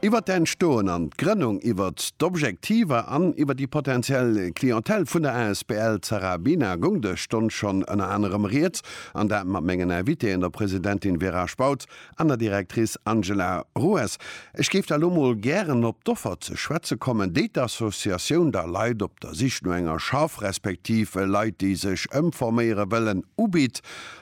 Iwwer d'Entstoen an d'Grënnung, iwwer d'Objektiver an iwwer déi potentiell Clientèle vun der asbl Zara Bina goung dës Stonn schonn ënner anerem Rieds, an dat mat mengen Invitéen, der Presidentin Vera Spautz an der Directrice Angela Rues. Ech géif da lo mol gären op d'Offer ze schwätze kommen, déi d'Associatioun der Leit op der Sich no enger Schaff respektiv Leit, déi sech ëmforméiere wëllen, ubitt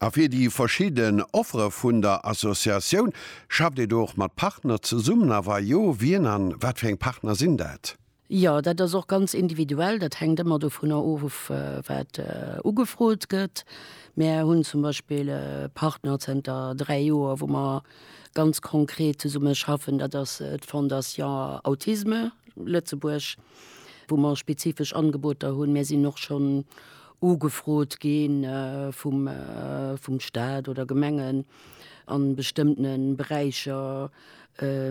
A fir déi verschidden Offere vun der Associatioun, schafft Dir do och mat Partner zesummen? A wa jo, wien a wat fir eng Partner sinn dat? Jo, dat ass och ganz individuell. Dat hänkt ëmmer dovunner of, wat ugefrot gëtt. Mär hunn zum Beispill e Partner zënter dräi Joer, wou mer ganz konkret zesumme schaffen. Dat ass d'Fondation Autisme Lëtzebuerg, wou mer spezifesch Angeboter hunn. Mär sinn och schonn ugefrot gi vum Staat oder Gemengen a bestëmmtene Beräicher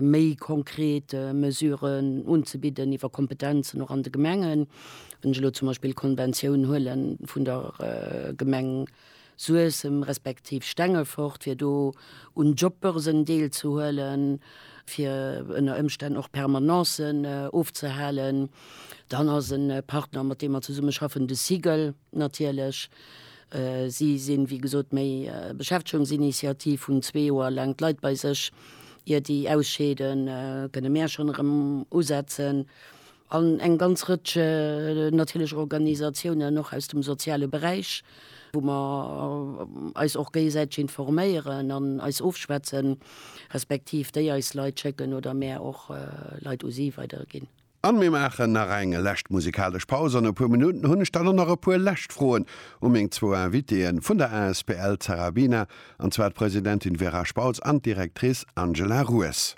méi konkret Mesuren unzebidden iwwer Kompetenzen och an de Gemengen. Wann ech elo zum Beispill d'Konventioun huele vun der Gemeng Suessem respektiv Stengefort, fir do un Jobbörsen deelzehuelen, fir ënner Ëmstänn och Permanencen ofzehalen, Dann ass e Partner, mat deem mer zesumme schaffen, de CIGL natierlech. Si sinn, wéi gesot, méi Beschäftegungsinitiativ, hunn zwee Joer laang d'Leit bei sech, ier déi ausscheeden, kënne mär schonn erëm usetzen. An eng ganz Rëtsch natierlech och Organisatiounen, och aus dem soziale Beräich, wou mer eis och géigesäiteg informéieren an eis ofschwätzen, respektiv déi eis Leit schécken oder mär och Leit u si weiderginn. An mir maachen nach eng lescht musikalesch Paus. An e puer Minutten hunn ech dann och nach e puer lescht Froen u meng zwou Invitéeën vun der asbl Zarabina, an zwar d'Presidentin Vera Spautz an d'Directrice Angela Rues.